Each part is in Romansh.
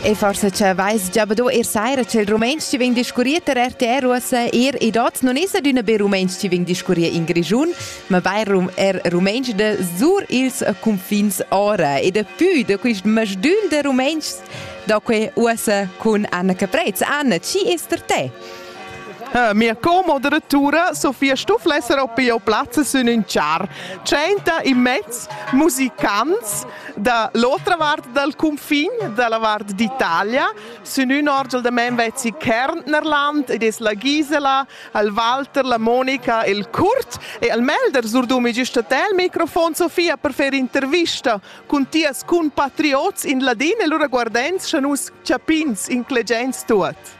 E forse c'è weiß già do ir saira c'è il rumens ci veng discurriert der RTR russe ir i dot non is adüna be rumens ci veng discurrier in Grigiun, ma bei rum er rumens de sur ils confins ora e de pü de quist masdül de rumens da que usse con Anna Caprez. Anna, ci ist der te? Eh, mia co-moderatura Sofia Stufflesser op Peo Platz sün ün char. Tschenta in mezz musicants Da l'otra vart dal cunfin da la vart d'Italia sun ün orgel da men vezzi Kärntnerland ed es la Gisela, al Walter, la Monica e il Kurt e al Melder surdumi güsta te il microfon Sofia per fer intervista cun tias compatriots in ladin e lura guardends scha nus chapins inclegents tuot.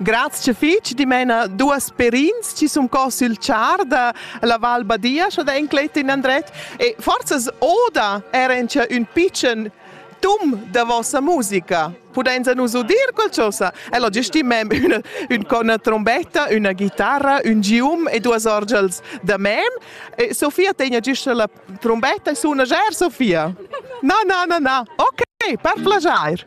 Grazia fitg dimena duas perins ci sun co sül char da la Val Badia, scho da enclet in andret e forzas oda era in cha ün pitschen tum da vossa musica. Pudainsa nus udir qualchosa? Ella gestimem üna, ün con una trombetta, üna guitarra, ün gium e duas orgels da mem. E Sofia tegna gista la trombetta e suna ger, Sofia. Na, na, na, na. Ok, per plagiair.